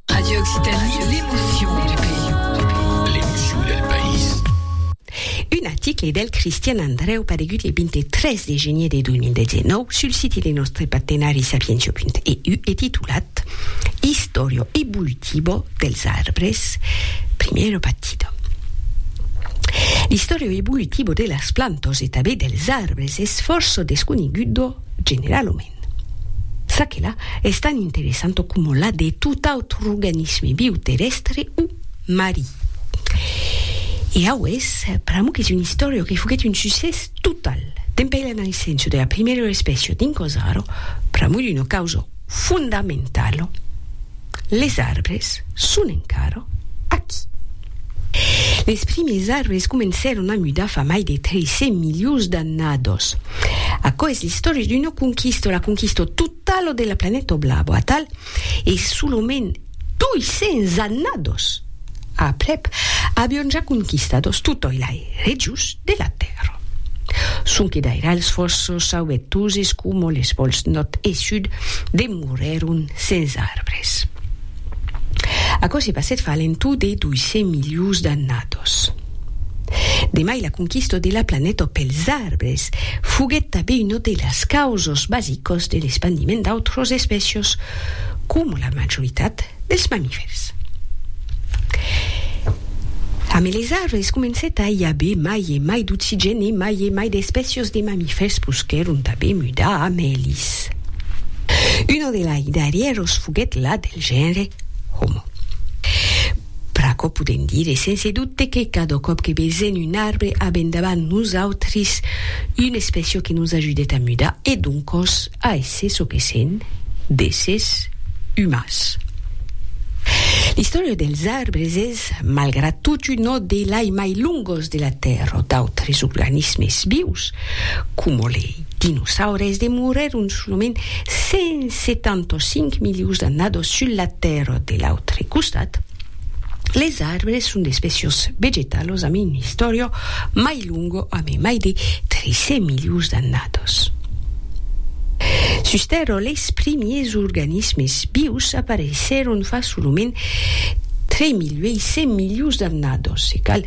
Radio Occitanie, l'emotion du pays. L'emotion del país. Un article del Cristian Andreu paregut le 23 de genier de 2019 sul siti de nòstre partenari sapientia.eu e titulat Historio evolutivo dels arbres, primero partido. L'historio evolutivo de las plantas e tanben dels arbres es fòrça desconegudo Generalament, ça que la es tan interessant coma la de tot autre organisme viu terrèstre o marí. E aués, pr'amo qu'es una istòria que foguèt un succès total, dempeir la naissença de la primèra espècia dins Cozzaro, pr'amo d'una causa fondamentalo, les arbres son encara aquí. Les primiers arbres comencèron a mudar fa mai de 300 milions d'annados. Aquò es l'istòria d'una conquista, la conquista totala de la planeta blava, atal e solament 200 annados aprèp, avion ja conquistados totòi lai regions de la Tèrra. Sonque d'aira els fòssos sauvetuses coma les pòls nòrd e sud demorèron sens arbres. Aquò se passèt fa a l'entorn de 200 milions d'annados. De mai la conquista de la planeta pels arbres foguèt tanben una de las causas basicas de l'espandiment d'autras espècias, coma la majoritat dels mamifèrs. Amé les arbres comencèt a i aver mai e mai d'oxigèn e mai e mai d'espècias de mamifèrs posquèron tanben mudar a mèlis. Una de lai darrièras foguèt la del genre Homo. Pr'aquò podèm dire sense dubte que cada còp que vesèn un arbre avèn davant nosautris una expression que nos ajudèt a mudar e doncòs a èsser çò que sèn, d'èssers umans. L'istòria dels arbres es, malgrat tot, una de lai mai longos de la Tèrra. D'autres organismes vius, coma lei. dinosaures demorèron solament 175 milions d'annadas sus la Tèrra de l'autre costat, les arbres son d'espècias vegetalas amb una istòria mai longa amb mai de 300 milions d'annadas. Sus Tèrra, les primièrs organismes vius apareissèron fa solament 3.800 milions d'annadas e cal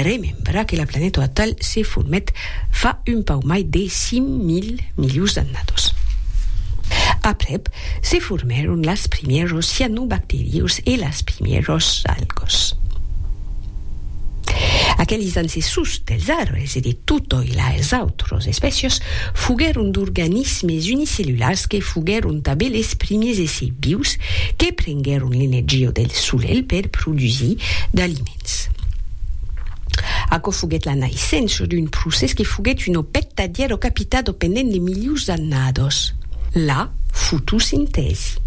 remembrar que la planeta atal se formèt fa un pauc mai de 5.000 milions d'annados. Aprèp, se formèron las primièros cianobacterius e las primièros algos. Aqueles ancessors dels arbres e de totòi las autros espècias foguèron d'organismes unicellulars que foguèron tanben les primiers èssers vius que prenguèron l'energia del solelh per produsir d'aliment. Ritz. Aquò foguèt la naissença d'un procès que foguèt un òbet tadièr o capitado pendent de milius d'annados, la fotosintèsi.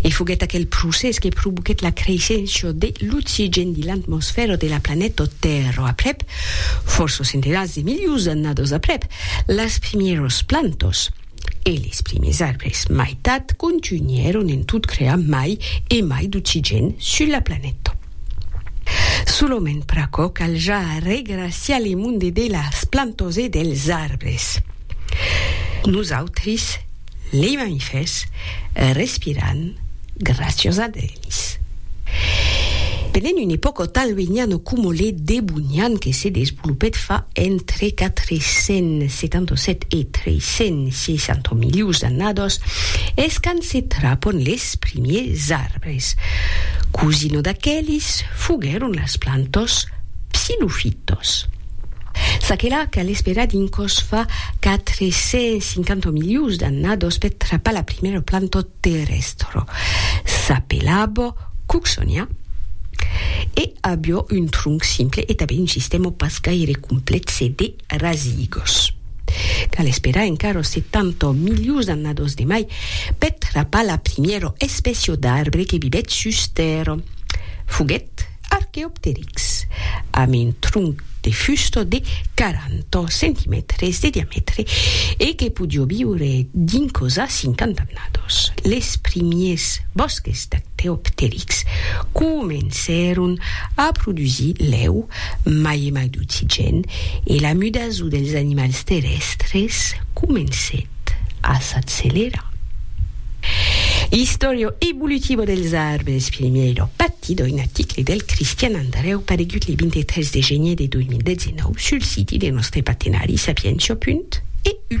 E foguèt aquel procès que provoquèt la creissença de l'oxigèn dins l'atmosfèra de la planeta Tèrra. Aprèp, fòrça centenats de milius d'annados aprèp, las primièras plantas, E les primes arbres maitat contunhèron en tot crear mai e mai d'oxigen sul la planeta. Solament pr'aquò cal ja regraciar le monde de las plantas e dels arbres. Nosautris, lei mamifèrs, respiram graciós a d'el. Ais. Pendent un epòca tan luenhana coma le Debonian que se desvolopèt fa entre 477 e 360 milions d'annadas, es quand se trapon les primiers arbres. Cosina d'aquelis foguèron las plantas psilofitas. Çaquelà cal esperar dins còs fa 450 milions d'annadas per trapar la primièra planta terrestro, s'apelabo Cooksonia e abió un tronc simple e tanben un sistèmo pas gaire complèxe de rasigos. Cal esperar encara 70 milions d'annados de mai per trapar la primièra espècia d'arbre que vivèt sus Tèrra. Foguèt Archaeopteryx, amb un tronc de fusta de 40 centimètres de diamètre e que podiá viure dincòs a 50 annadós. Les primièrs bòsques d'Archaeopteryx comencèron a produsir lèu, mai e mai d'oxigèn, e la mudason dels animals terrèstres comencèt. a s'accelerar. Historia evolutiva dels arbres, Filimièira, partit d'un article del Cristian Andarèu paregut le 23 de genier de 2019 sul siti de nòstre partenari Sapientia. EU.